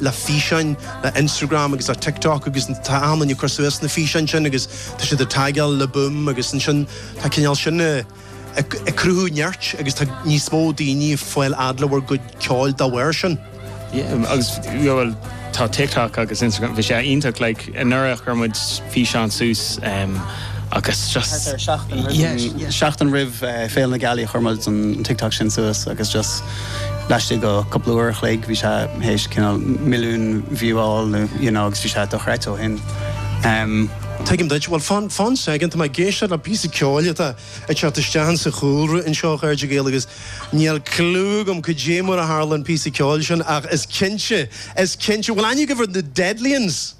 le físeáin le Instagram agus le TikTok agus tá daoine ag cur suas na físeáin sin agus tá siad ag tagáil Le Boom agus ansin tá cineál sin ag ag cruthú neart agus tá níos mó daoine ag fáil amach faoi bhur gcuid ceoil dá bharr sin. Yeah agus yeah bhuel tá TikTok agus Instagram bhí sé iontach like Anuraidh chuir muid físeán suas agus just, yeah, seachtain roimh Féile na Gealaí chuir muid an TikTok sin suas agus just laistigh de cúpla uair a chloig bhí sé tar éis cineál milliún view a fháil nó you know agus bhí sé dochreidte ó shin. Tuigim duit. Bhuel, fan soicind, tá mé ag éisteacht le píosa ceoil atá ag teacht isteach sa chúlra anseo ar Raidió Gaeilge agus Níl cliú agam cad é mar a tharla an píosa ceoil sin ach is cinnte, is cinnte, bhuel I knew they were the Deadliens,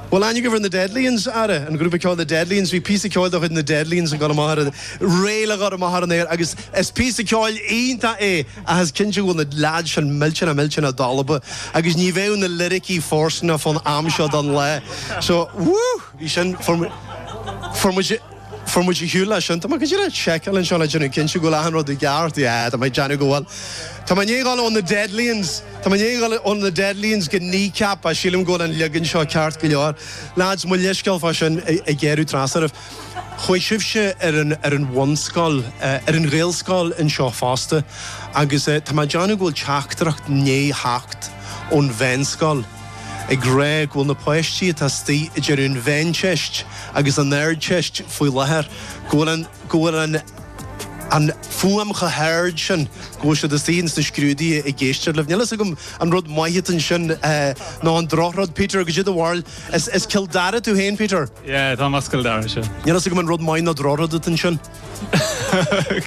bhuel I knew they were the Deadlians, ara, an grúpa ceoil The Deadlians, bhí píosa ceoil de chuid na Deadlians ag dul amach ar an, réidh le dhul amach ar an aer agus is píosa ceoil iontach é ach is cinnte go bhfuil na leaids sin millteanach, millteanach dalba agus ní bheadh na liricí fóirsteanach fán am seo den lá so, whoo, bhí sin, fuair muid, fuair muid. Fuair muid ar shiúl leis sin. Tá mé ag déanamh seiceáil anseo le déanamh cinnte go bhfuil achan rud i gceart. Yeah, tá mé ag déanamh go bhfuil. Tá mé i ndiaidh dul ó na Deadlians, tá mé i ndiaidh dul ó na Deadlians go Kneecap ach sílim go bhfuil an leagan seo ceart go leor. Lads, mo leithscéal fá sin ag gearradh trasna oraibh. Chuaigh sibhse ar an, ar an bhunscoil, ar an Ghaelscoil anseo fosta agus tá mé ag déanamh go bhfuil teachtaireacht i ndiaidh theacht ón Mheánscoil, ag rá go bhfuil na páistí atá istigh ag déanamh an Mheánteist agus an Ardteist faoi láthair go bhfuil an go bhfuil an an fuaim chomh hard sin go bhfuil siad istigh ins na scrúduithe ag éisteacht libh. Níl fhios agam an rud maith atá ansin eh nó an drochrud Peter cad é do bharúil. Is is Cill Dara tú féin Peter? Yeah, táim as Cill Dara seo. Níl fhios agam an rud maith nó drochrud atá ansin.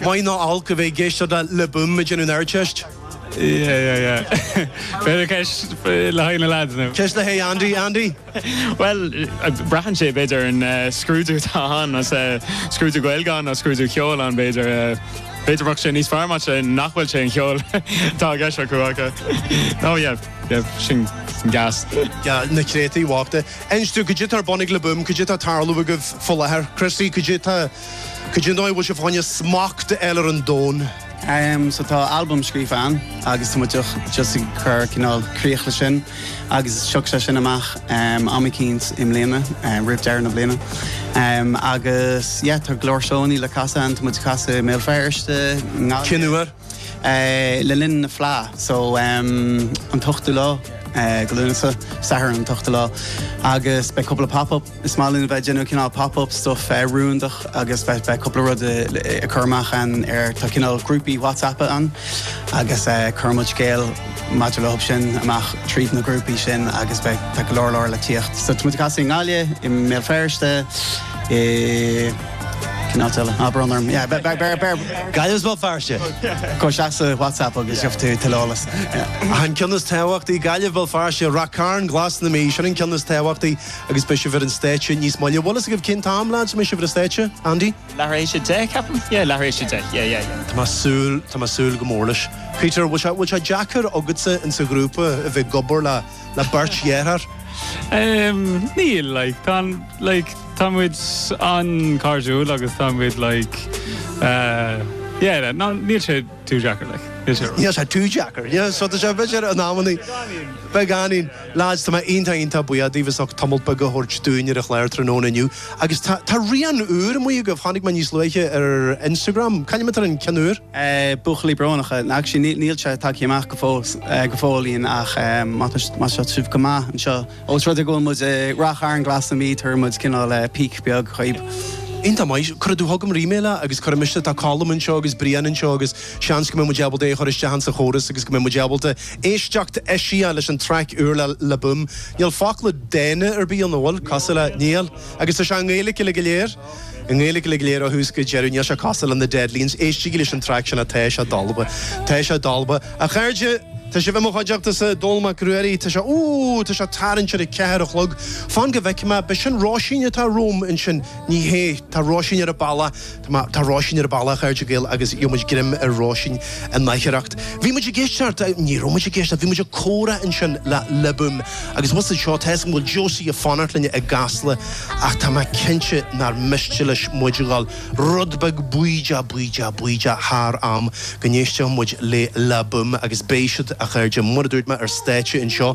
Maith nó olc a bheith ag éisteacht le Le Boom ag déanamh an Ardteist. Yeah, yeah, yeah. B'fhéidir ceist le haghaidh na lads nó? Ceist le haghaidh Andy, Andy? Bhuel, braitheann sé b'fhéidir ar an scrúdú atá ann, más scrúdú Gaeilge ann nó scrúdú ceoil ann b'fhéidir. B'fhéidir go mbeadh sé níos fearr maths nach bhfuil sé an cheol tá a gceist acu aca. Ó yeah, yeah, sin gas. Yeah, na créatúir bhochta. Inis dúinn, Cad é tá ar bun ag Le Boom? Cad é tá ag tarlú agaibh faoi láthair? Chrissie, Cad é tá Cad é an dóigh a bhfuil sibh ag fáil smacht a fháil ar an domhan? Em, so tá albam scríofa againn agus támuid just just ag cur cineál críoch le sin agus tiocfaidh sé sin amach em am eicínt i mbliana em roimh dheireadh na bliana. Em agus yeah tá go leor seónna le casadh againn táimid ag casadh i mBéal Feirste ná Cinúar? le linn na Fleá so an t-ochtú lá de Lúnasa, Satharn an t-ochtú lá agus beidh cúpla pop up, is maith linn a bheith ag déanamh cineál pop up stuff rúndach agus beidh beidh cúpla rud á chur amach ann ar tá cineál grúpaí WhatsApp ann agus cuirimid scéal maidir leob sin amach tríd na grúpaí sin agus beidh tá go leor leor le tíocht so tá muid ag casadh i nGaillimh, i mBéal Feirste, i. Cén áit eile? Ah, brón orm. Yeah, beir, beir, beir. Gaillimh is mo phairce. Gabh isteach sa WhatsApp agus gheobhaidh tú tuilleadh eolais. Yeah. An ceann is tábhachtaí, Gaillimh, Béal Feirste, Ráth Chairn, Glas na Mí, sin an ceann is tábhachtaí agus beidh sibh ar an stáitse níos moille. An bhfuil fhios agaibh cén t-am, lads, a mbeidh sibh ar an stáitse, Andy? Leath tar éis a deich, ceapaim? Yeah, leath tar éis a deich, yeah, yeah, yeah. Tá mé ag súil, tá mé ag súil go mór leis. Peter, bhfuil sé, bhfuil sé deacair agatsa insa ghrúpa a bheith ag obair le. le beirt dhearthár? Ehm, níl, like, tá an, like, tá muid an-chairdiúil agus tá muid, like, eh, yeah, ná, níl sé too deacair, like, níl sé. Níl sé too deacair, yeah, so tá sé an bheirt an amannaí. Beagáinín. Beagáinín. Lads, tá mé iontach, iontach buíoch daoibh as ucht tamallt beag a thabhairt dúinn ar an chlár tráthnóna inniu. Agus tá, tá rian úr amuigh agaibh, chonaic mé níos luaithe ar Instagram, c'ainm atá ar an cheann úr. buachaillí brónacha, ach sin, níl sé tagtha amach go fóill, go fóillín ach má tá, má tá sibh go maith anseo, os rud é go bhfuil muid i Ráth Chairn Glas na Mí, tabharfaidh muid cineál peek beag dhaoib. Iontach maith, cuirfidh tú chugam ar e-mail é agus cuirfidh mise, tá Colm anseo agus Brian anseo agus seans go mbeidh muid ábalta é a chur isteach insa chóras agus go mbeidh muid ábalta éisteacht, eisiach leis an traic úr le Le Boom. Níl focla dána ar bith ann, an bhfuil? Cosúil le, níl. Agus tá sé i nGaeilge uilig go léir? I nGaeilge uilig go léir ó thús go deireadh, níl sé cosúil le na Deadlians. Éistigí leis an traic sin, Tá sé dalba. Tá sé dalba. A chairde, tá sibh i mo chuideachtasa, Dónall Mac Ruairí, tá sé, ooh, tá sé ag tarraingt ar a ceathair a chlog. Fan go bhfeice mé, ab é sin Róisín atá romham ansin. Ní hé. Tá Róisín ar a bealach. Tá mé, tá Róisín ar a bealach, a chairde Gael, agus gheobhaimid greim ar Róisín in aicearracht. Bhí muid ag éisteacht, ní raibh muid ag éisteacht, bhí muid ag comhrá ansin le Le Boom. Agus abhus anseo, tá a fhios agam go bhfuil Josie ag fanacht linne i gCasla ach tá mé cinnte nár miste leis muid a dhul rud beag bídeach bídeach bídeach thar am go n-éistfeadh muid le Le Boom agus beidh siad a chairde mar a dúirt mé ar stáitse anseo